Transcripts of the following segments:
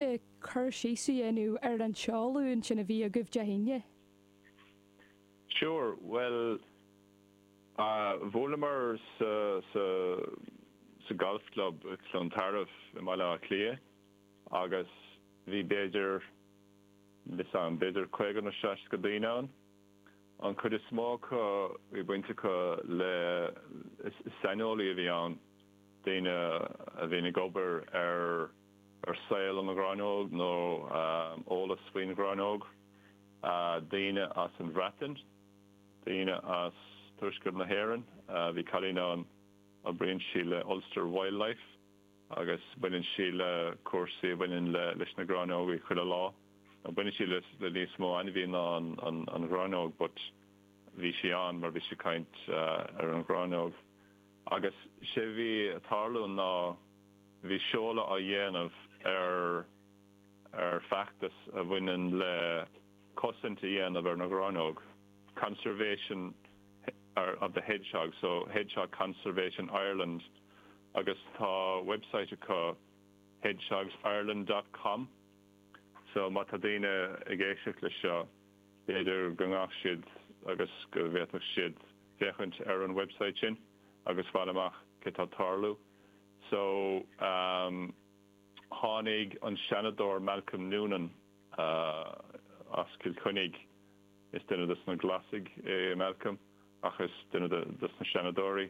cur síos a dhéanamh ar an seoladh ansin a bhí agaibh Dé hAoine? Sure, bhuel, bhuaileamar sa, sa, sa Golf Club i gCluain Tarbh i mBaile Átha Cliath agus bhí b'fhéidir, níl fhios a'm, b'fhéidir caoga nó seasca daoine ann. An cuid is mó acu, bhí baint acu le, saineolaithe a bhí ann, daoine a bhíonn ag obair ar, ar saol an ngráinneog nó eolas faoin ghráinneog, daoine as an Bhreatain, daoine as tuaisceart na hÉireann, bhí cailín ann, oibríonn sí le Ulster Wildlife agus baineann sí le cúrsaí a bhaineann leis na gráinneogaí chuile lá, baineann sí le níos mó ainmhí ná an ghráinneog but bhí sí ann mar bhí sí ag caint ar an ghráinneog. Agus sé bhí ag tarlú ná bhí seoladh á dhéanamh ar ar feachtas a bhaineann le cosaint a dhéanamh ar na gráinneog, Conservation of the Hedgehog, so Hedgehog Conservation Ireland agus tá website acu hedgehogsireland dot com so má tá daoine ag éisteacht le seo b'fhéidir go ngabhfadh siad agus go bhféadfadh siad féachaint ar an website sin agus fáil amach céard atá tarlú. So, um tháinig an Seanadóir Malcolm Noonan as Cill Chainnigh, is duine dos na Glasaigh é Malcolm ach is duine dos na Seanadóirí,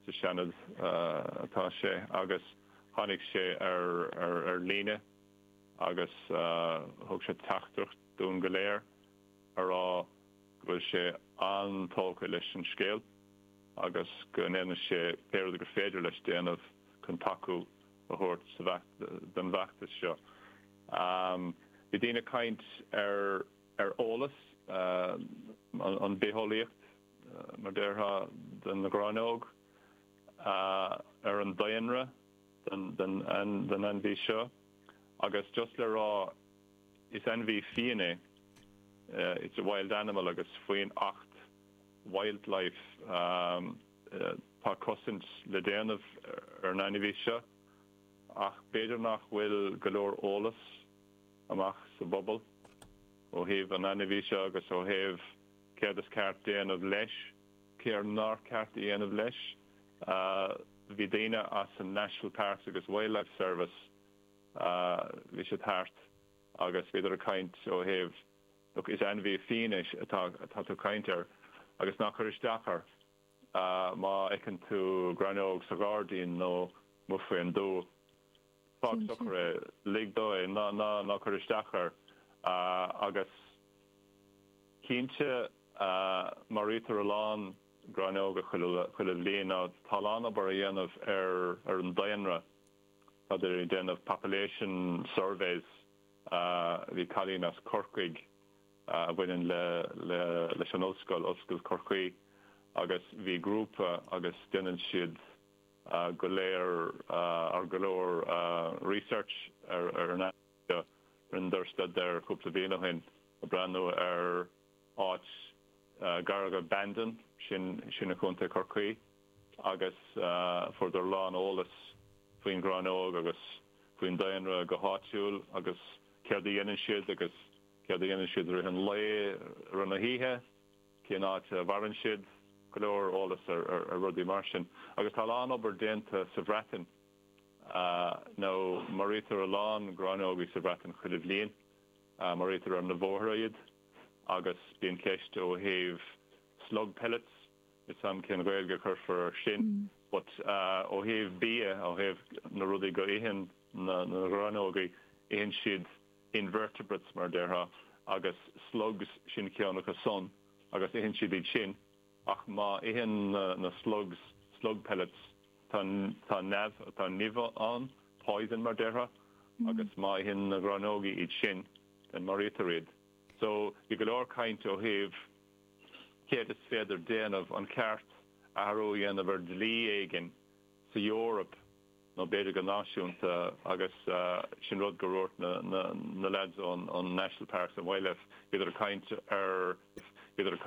sa Seanad atá sé, agus tháinig sé ar ar líne agus thug sé teachtaireacht dúinn go léir. a rá go bhfuil sé an-tógtha leis an scéal agus go ndéanfaidh sé pé rud gur féidir leis déanamh chun tacú a thabhairt don bhfeachtas seo. Bhí daoine ag caint ar ar eolas, an bitheolaíocht mar a déarfá, den ghráinneog, ar an daonra den ainmhí seo agus just le rá, Is ainmhí fiain é, it's a wild animal, agus faoin Acht Wildlife um tá cosaint le déanamh ar an ainmhí seo ach b'fhéidir nach bhfuil go leor eolas amach sa bpobal ó thaobh an ainmhí seo agus ó thaobh céard is ceart déanamh leis, céard nár cheart a dhéanamh leis. Bhí daoine as an National Parks agus Wildlife Service. Bhí siad thart agus bhíodar ag caint ó thaobh, look, is ainmhí fiáin é atá tú ag caint air agus ná cuir isteach air má fheiceann tú gráinneog sa ghairdín nó amuigh faoin dtuath. Fág socair é, lig dó é, ná cuir isteach air. Agus cinnte maraítear a lán gráineoga chuile bhliain. Tá a lán obair á dhéanamh ar an daonra. Tá daoine ag déanamh population surveys. Bhí cailín as Corcaigh a bhaineann le leis an ollscoil, Ollscoil Chorcaí, agus bhí grúpa agus déanann siad go léir or go leor research air seo. Rinneadar staidéar cúpla bhliain ó shin ag breathnú ar. Áit gar go Bandon, sin i Co. Chorcaí, agus fuaireadar a lán eolas faoin ghráinneog agus faoin daonra go háitiúil agus céard a dhéanann siad agus céard a dhéanann siad i rith an lae, i rith na hoíche, cén áit a mhaireann siad, go leor eolas ar rudaí mar sin. Agus tá a lán obair déanta sa Bhreatain mar maraítear a lán gráinneogaí sa Bhreatain chuile bhliain. Maraítear ar na bhóithre iad agus bíonn ceist ó thaobh slug pellets, níl a fhios agam cén Ghaeilge a chuirfear ar sin, but ó thaobh bia, ó thaobh na rudaí go itheann na gráinneogaí, itheann siad invertebrates mar a déarfá agus slugs, sin ceann acu san agus itheann siad iad sin. Ach má itheann na slugs slug pellets, tá nimh, tá nimh ann, poison mar déarfá, agus má itheann na gráinneogaí iad sin, then maraítear iad. So, bhí go leor caint ó thaobh céard is féidir déanamh, an ceart athrú a dhéanamh ar dlí éigin sa Eoraip nó b'fhéidir go náisiúnta agus sin rud go raibh na lads ón National Parks and Wildlife, bhíodar ag caint ar, bhíodar ag.